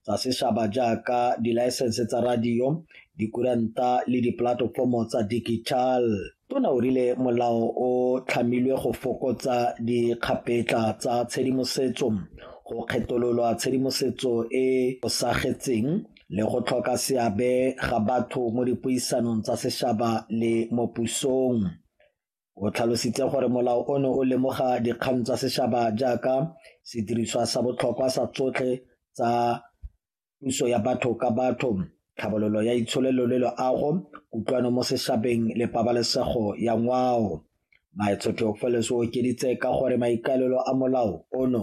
tsa sešaba jaaka dilaesense tsa radio, dikuranta le dipolatofomo tsa digital. Tona o rile molao o tlhamilwe go fokotsa dikgapetla tsa tshedimosetso, go kgetololwa tshedimosetso e osagetseng le go tlhoka seabe ga batho mo dipuisanong tsa sešaba le mo pusong. O tlhalositse gore molao ono o lemoga dikgang tsa setšhaba jaaka sediriswa sa botlhokwa sa tsotlhe tsa puso ya batho ka batho, tlhabololo ya itsholelo le loago, kutlwano mo setšhabeng le pabalesego ya ngwao. Maetsho Theofelus o okeditse ka gore maikaelelo a molao ono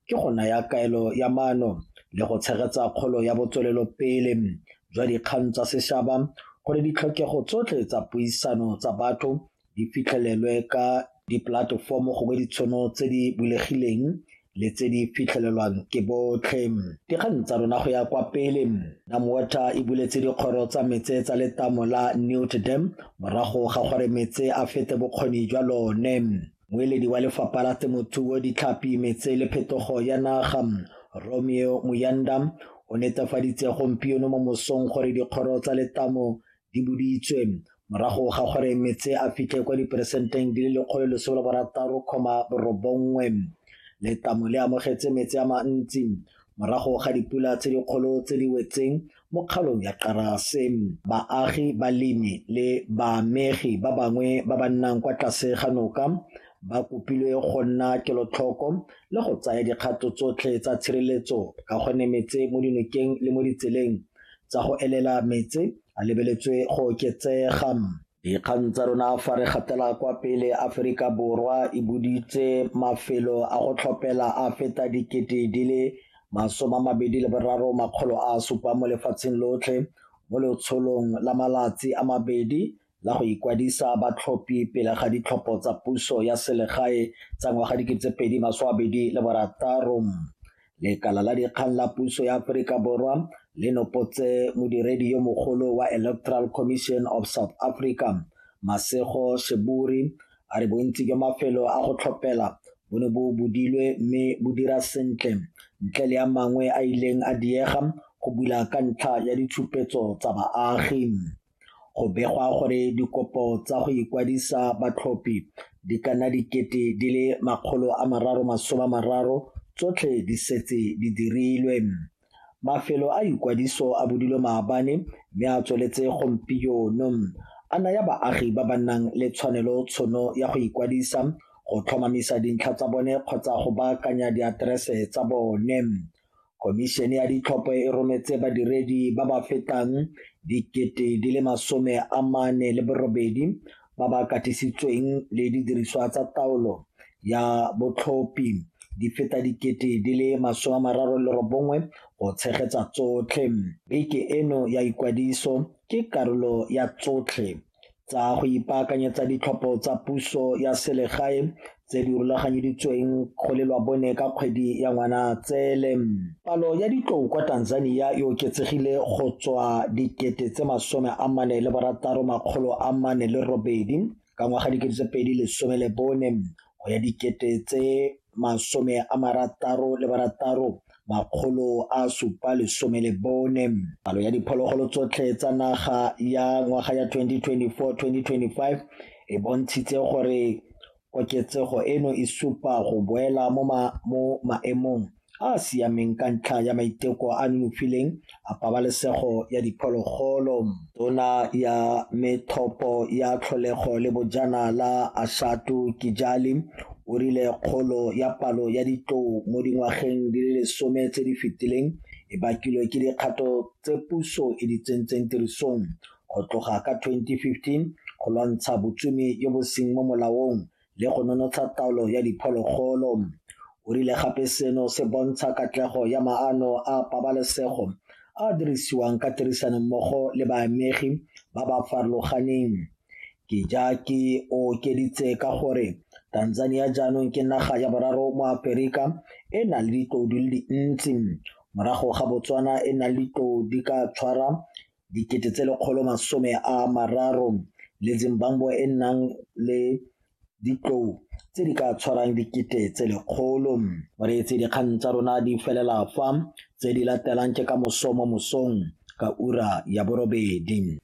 ke go naya kaelo ya maano le go tshegetsa kgolo ya botswelelopele jwa dikgang tsa sešaba gore ditlhokego tsotlhe tsa puisano tsa batho di fitlhelelwe ka dipolatefomo gongwe ditshono tse di bulegileng le tse di fitlhelelwang ke botlhe dikgang tsa rona go ya kwa pele namwater e buletse dikgoro tsa metse tsa letamo la newt dam morago ga gore metse a fete bokgoni jwa lone Moeledi wa lefapha la temothuo ditlhapi metse le phetogo ya naga Romeo Muyanda o netefaditse gompieno mo mosong gore dikgoro tsa letamo di boditswe morago ga gore metse a fitlhe kwa diperesenteng di le lekgolo lesome la borataro kgoma borobongwe letamo le amogetse metse a mantsi morago ga dipula tse dikgolo tse di wetseng Mo kgalong ya Xarase, baagi, balemi le baamegi ba bangwe ba ba nnang kwa tlase ga noka ba kopilwe go nna kelotlhoko le go tsaya dikgato tsotlhe tsa tshireletso ka go ne metse mo dinokeng le mo ditseleng tsa go elela metse a lebeletswe go oketsega. Dikgang tsa rona fa re gatela kwa pele Aforika Borwa e buditse mafelo a go tlhopela a feta dikete di le masome a mabedi le boraro makgolo a supa mo lefatsheng lotlhe mo letsholong la malatsi a mabedi la go ikwadisa batlhophi pele ga ditlhopho tsa puso ya selegae tsa ngwaga dikete tse pedi masome a mabedi le borataro. Lekala la dikgang la puso ya Aforika Borwa le nopotse modiredi yo mogolo wa Electoral Commission of South Africa, Masego Sheburi, a re bontsi jwa mafelo a go tlhopela bo ne bo budilwe mme bo dira sentle ntle le a mangwe a ileng a diega go bula ka ntlha ya ditshupetso tsa baagi. Go begwa gore dikopo tsa go ikwadisa batlhophi di ka nna dikete di le makgolo a mararo masome a mararo tsotlhe di setse di dirilwe. Mafelo a ikwadiso a budilwe maabane mme a tsweletse gompieno a naya baagi ba ba nang le tshwanelo tshono ya go ikwadisa, go tlhomamisa dintlha tsa bone kgotsa go baakanya diaterese tsa bone. Khomišene ya ditlhopho e rometse badiredi ba ba fetang dikete di le masome a mane le borobedi ba ba katisitsweng le didiriswa tsa taolo ya botlhophi di feta dikete di le masome a mararo le robongwe go tshegetsa tsotlhe. Beke eno ya ikwadiso ke karolo ya tsotlhe tsa go ipaakanyetsa ditlhopho tsa puso ya selegae tse di rulaganyeditsweng go lelwa bone ka kgwedi ya Ngwanatsele. Palo ya ditlou kwa Tanzania e oketsegile go tswa dikete tse masome a mane le borataro makgolo a mane le robedi ka ngwaga dikete tse pedi lesome le bone go ya dikete tse masome a marataro le barataro makgolo a supa lesome le bone. Palo ya diphologolo tsotlhe tsa naga ya ngwaga ya 2024-2025 e bontshitse gore koketsego eno e supa go boela mo maemong a a siameng ka ntlha ya maiteko a nonofileng a pabalesego ya diphologolo. Tona ya methopo ya tlholego le bojana la Ashatu Kijali o rile kgolo ya palo ya ditlou mo dingwageng di le lesome tse di fetileng e bakilwe ke dikgato tse puso e di tsentseng tirisong go tloga ka 2015 go lwantsha botsumi jo bo seng mo molaong le go nonotsha taolo ya diphologolo. O rile gape seno se bontsha katlego ya maano a pabalesego a dirisiwang ka tirisanommogo le baamegi ba ba farologaneng. Kijaki o okeditse ka gore Tanzania jaanong ke naga ya boraro mo Aperika e na le ditlou di le dintsi morago ga Botswana e na le ditlou di ka tshwara 130 le Zimbabwe e e nang le ditlou tse di ka tshwarang dikete tse lekgolo. O reetse dikgang tsa rona di felela fa tse di latelang ke ka moso mo mosong ka ura ya borobedi.